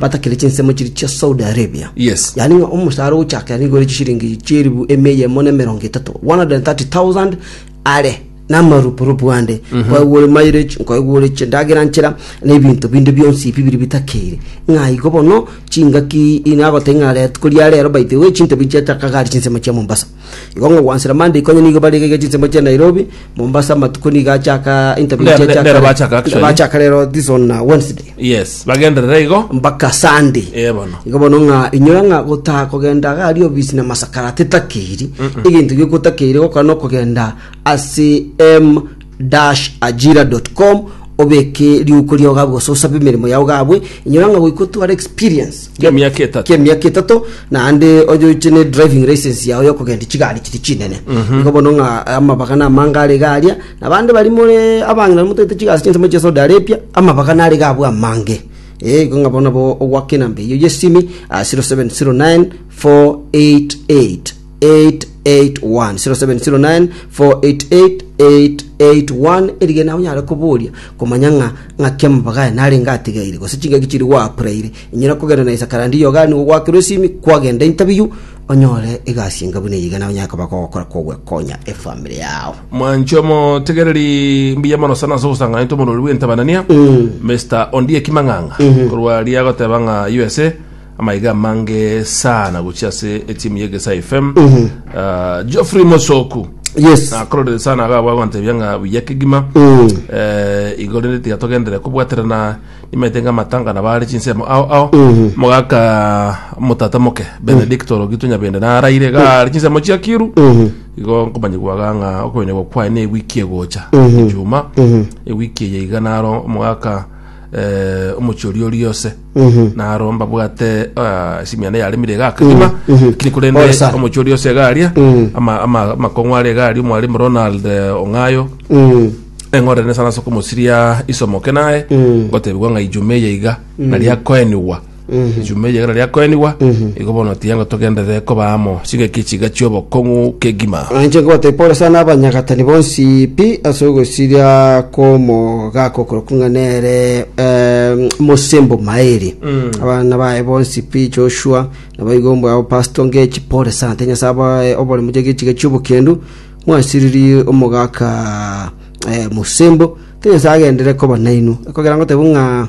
batakire chinsemo chiria chia Saudi Arabia. Yes. Yani ng'a omosaara ogochakera nigo ore chishiringi chieribu emia eyemo na emerongo etato 130,000 are namarupurupu ande nkoegwa ore mileage nkoegwa ore chindagera nchera na ebinto binde bionsi ebi biri bitakeire ng'a igo bono chingaki inagoteba ng'a ret- koria rero by the way chintabi chiachakaga are chinsemo chia mombasa Igo ngogwansera Mandiko onye nigo barenge gete chinsemo chia Nairobi, Mombasa amatuko nigo achaka interview Nere- chia chakare. nere bachaka actually. Bachaka rero this on uh, Wednesday yes bagenderere igo mpaka Sunday. Eh, bono. Igo bono ng'a inyora ng'a gotaha kogenda gari obisi na masakara tetakiri egento giokotakeire gokora nokogenda ase M www.ajira.com obeke riuko riao gabu gose osabe emeremo yao gabwe inyora ng'a goika otware experience Kia emiaka etato. kia emiaka etato naende onyoche ne driving license yao ya okogenda chigari chiri chinene igo bono ng'a amabaga na amange are iga aria na abande bari more abang'ina motaete chigasi chinsemo chia Saudi Arabia amabaga nare iga abwo amange eh igo ng'a bono bo ogwaka enamba eyio y'esimi ah, 0709 488 0709488881 erige nawe onyare koboria komanya ng'a ng'aki amabaga aya narenge atigaire gose chingaki chiri gwaapuraire inyora kogenda na isakarandi iyoga nigo ogwakerwa esimi kwagenda interview onyore egasi enga buna eye iga nawe onyare koba kogokora kogwekonya efamiri yao Mwancho omotegereri mbuya mono sana ase ogosanganetwa omorwori bw'entabanania Mister Ondieki Mang'ang'a korwa aria agoteba ng'a USA Amaiga amange sana gochia ase etimu ya Egesae FM. Ah, Geoffrey Mosoku. Yes. Nakororire sana aga gwagwantebia ng'a buya kegima. Mm. Eh, igo rende tiga togendere kobwaterana nimaete ng'a amatanga na bare chinsemo ao ao. Mogaka motata moke Benedicto Rogitu Nyabende naraire ga are chinsemo chia Kiru. Igo nkomanya gwaga ng'a okoenerwa kwaye ne ewiki egocha. Ejuma. Ewiki eye iga naro omogaka eh, omochie oria oria ose naro mbabwate ah, esimiana yaremire iga akagima kiri korende Pole sana. omochie oria ose iga aria ama- ama- amakong'u aria iga aria omwaremu ronald eh, ong'ayo Mm. eng'orerene sana ase okomosiria isomoke naye gotebigwa ng'a ijume eye iga nari akoenigwa Ejuma eye ekero riakoenigwa, igo bono tiengo togenderere koba amo chingaki chiga chi'obokong'u kegima. Nainche nkobatabi Paulo ase nabanyagatani bonsi pi ase ogosiria kw'omogaka okorokwa ng'a nere eh, mosembo maeri. Abana baye bonsi pi Joshua naboigo ombwabo Pasto Ngechi pore sana te Nyasaye abae oboremu chege chiga chi'obokendu mwasiririe omogaka eh, mosembo te Nyasaye agenderere koba nainwe ekogera ngotebu ng'a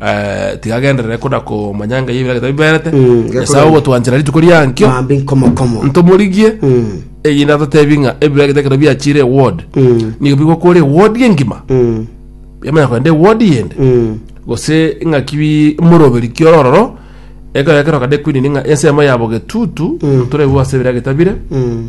Eh, tigagenderere koda komanya ng'ai ebira gete biberete Mm, nyasae gekora- ogotwanchera rituko riankio mambi nkomokomo ntomorigie Mm, eyinde atotebi ng'a ebira gete ekero biachire eward mm, nigo bigokora eward engima mm, yamanya kogenda eward yende mm, gose ng'aki bi- moroberi kioro ororo ekero ekero kade kwinini ng'a ensemo yabo getutu Mm. torebu ase ebira getabire mm.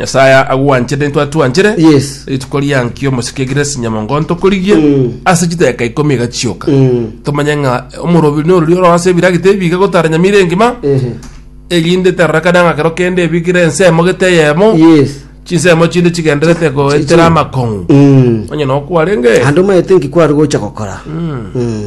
Nyasae agwanchete intwe atwanchire Yes. rituko riankio omosike egire sinyamongo ntokorigie Mm. ase chideka ikomi egachioka Mm. tomanye ng'a omorobiri norori oro ase ebiragita ebi iga gotara nyama ire engima Ehe. erinde terarakane ng'a kero kende ebigire ensemo gete eyemo Yes. chinsemo chinde chigenderete goetera amakong'u Mm. onye nokwarenge Ande omaete nki kwari gocha gokora. Mm.